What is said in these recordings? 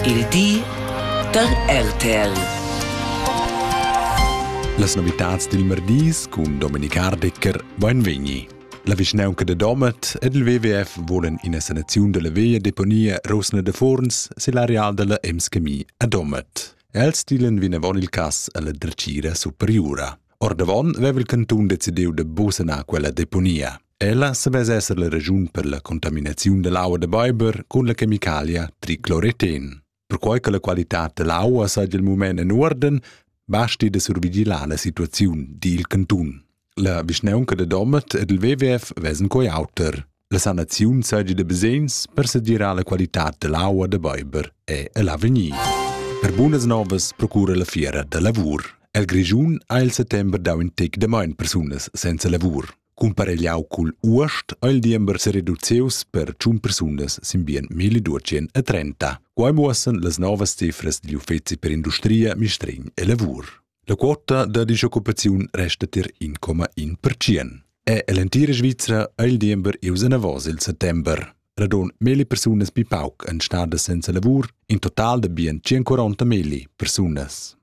Il di da RTL. Las novitads dil merdis cun Dominik Hardecker Beinvegni. La vischnaunca de Domat ed il WWF volen ina sanaziun della via deponia Rosna de Forns sil areal della Emskemi a Domat. Els stilen vinavon il cass alla dretgira superiura. Ordavon veva il cantun decidiu de busanar quella deponia. Ella savess esser la raschun per la contaminaziun dall'aua da beiber cun la chemicalia tricloreten. Perquai che la qualitad dall'aua saja il mument en uorden, basti da survigilar la situaziun dil cantun. La vischnaunca da Domat ed il WWF vesan coi auter. La sanaziun saja da basegns per segirar la qualitad dall'aua da beiber e l'avegnir. Per bunas novas procura la fiera da lavur. El Grischun ha il settember dau in tec da main persunas senza lavur. Cumparegliau cugl uost ha il diember sereduzius per tschun persunas sin bien 1230. Quai muossan las novas cifras digl uffeci per industria, mistregn e lavur. La quota da disoccupaziun resta tier 1,1%. E l'entira Svizra ha il diember ius anavos il settember. Radon meli persunas pi pauc en stadas senza lavur, in total da bien 140 meli persunas.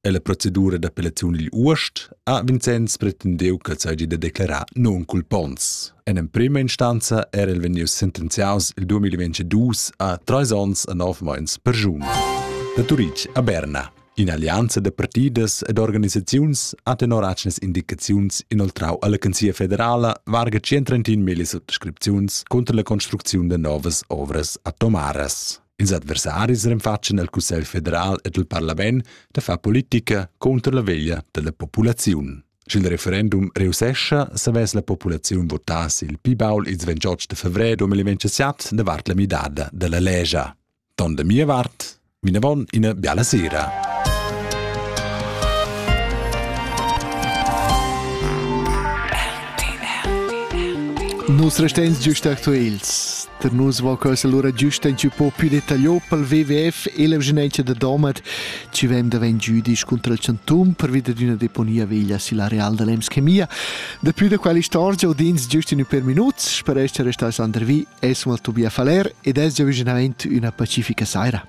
E la procedura d'appellaziun digl uost ha Vincenz pretendeu che seigi da declarar non-culpons. En emprema instanza era el vegnius sentenziaus il 2022 a treis onns e nov meins per giun. Da Turitg a Berna. In'allianza da partidas ed organisaziuns ha tenor atgnas indicaziuns inoltrau alla Canzia federala varga 130.000 sottascripziuns contra la construcziun da novas ovras atomaras. Ils adversaris renfatschen el Cussegl federal ed il parlament da far politica contro la veglia della populaziun. Sch'il referendum reussescha, savess la populaziun votar il pi baul ils 28 de febrer 2027 davart la midada della legia. Ton da mia vart, vinavon ina biala sera. Nus restens giust actuals Per nus vo questa lura giusta in po più detagliò pel WWF e l'evgenenza da Domat, ci vem davent giudisch contra il Chantum pervi da d'una deponia veglia silla Real da Lems Chemia. Da più da quella istorgia udins giust in per minuts, per essere restati Sander Vi, es mal Tobia Faller ed es già vicinament una pacifica saira.